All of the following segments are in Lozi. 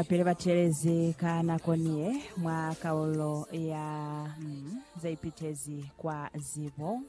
Pili batelezi ka nako niye mwa kaulo ya mm, zaipitezi kwa zibo.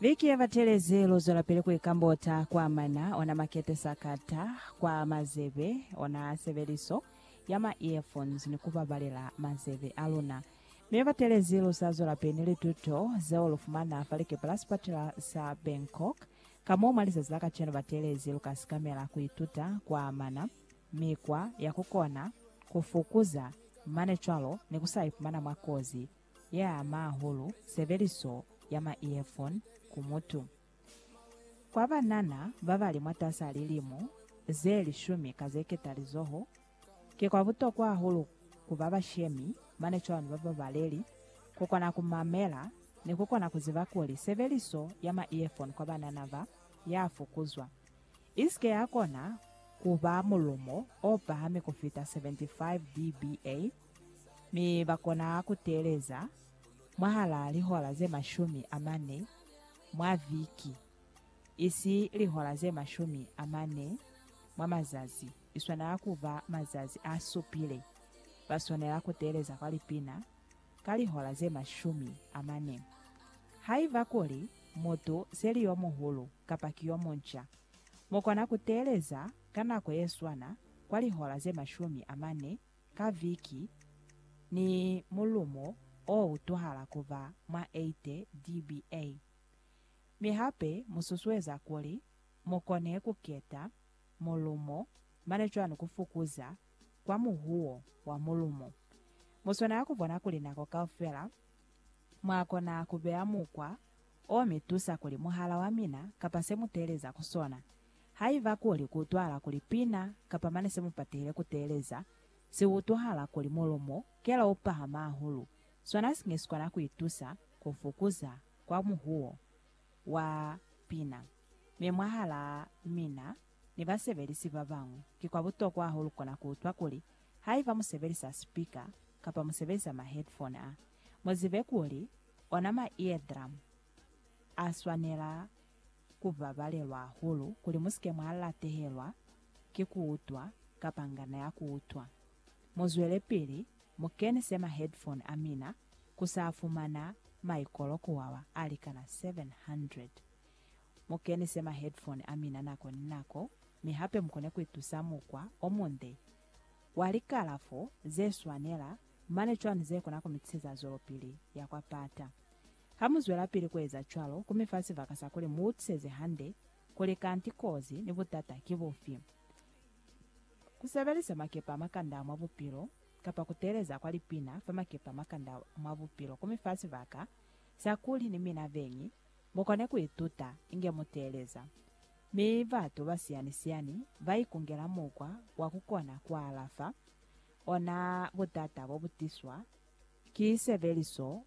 Viki yebatelezi luzwelapili kuikambota kwa mana ona makete sakata kwa mazebe ona sebeliso ya ma earphones ni kubabalela mazebe aluna. Mi batelezi lusazwelapili ni lituto zeo lufumana fa likepe la sipatela sa Bangkok. Ka mo mwa lizazi la kacenu ba teelezi lu ka sikamela ku ituta ku amana mikwa ya ku kona ku fukuza mane cwalo ni ku sa ipumana mwa kozi ye ama hahulu sebeliso ya ma-earphone ku mutu. Kwa banana ba ba li mwatas'a lilimo ze lishumi ka ze ketalizoho, Ki kwa butokwa hahulu ku ba bashemi, mane cwalo ni ba babaleli, ku kona ku mamela, ni ku kona ku ziba kuli sebeliso ya ma-earphone kwa banana ba ya fokuzwa, i si ke ya kona ku ba mulumo o pahami ku fita 75 dBA, mi ba kona ku teeleza mwahalaa lihola ze mashumi a mane mwa viki, isi lihola ze mashumi a mane mwa mazazi. i swanela ku ba mazazi a supile, ba swanela ku teeleza kwa lipina ka lihola ze mashumi a mane. Haiba kuli mutu se li yo muhulu kapa ki yo munca, mu kona ku teeleza ka nako ye swana kwa lihola ze mashumi a mane ka viki, ni mulumo o utwahala ku ba mwa 80 dBA. Mi hape mu susueza kuli mu kone ku keta mulumo, mane cwani ku fukuza kwa muhuwo wa mulumo? Mu swanela ku bona kuli nako kaufela mwa kona ku beya mukwa o mi tusa kuli muhala wa mina kapa se mu teeleza ku sona, haiba kuli ku utwahala kuli pina kapa mane se mu patehile ku teeleza, si utwahala kuli mulumo kela u pahama hahulu, sona si nge si kona ku itusa ku fukuza kwa muhuwo. wa pina, mi mwahalaa mina ni basebelisi babañwi, ki kwa butokwa hahulu kukona kuutwa kuli haiba musebelisa sipika kapa musebelisa ma-headphone a, muzibe kuli ona ma-eardrum aswanela kubabalelwa hahulu kuli musike mwa latehelwa ki kuutwa kapa ngana ya kuutwa. Muzwelepili mukenise ma headphone amina kusafumana maikolo kuwawa alikana 700. Mukenise ma headphone amina nako ni nako mi hape mukone kuitusa mukwa omunde wa likalafo zeswanela mane cwani zekona kumitiseza zwelopili ya kwa pata. Hamuzwelapili kueza cwalo, kumifa sibaka sakuli muutiseze hande kuli kanti kozi ni butata kibufi. Ku sebelisa makepe a makandau mwa bupilo kapa ku teeleza kwa lipina fa makepe a makandau mwa bupilo ku mi fa sibaka sa kuli ni mina beñi mu kone ku ituta inge mu teeleza. Mi batu ba siyani-siyani ba ikungela mukwa wa ku kona ku alafa ona butata bo bu tiswa ki sebeliso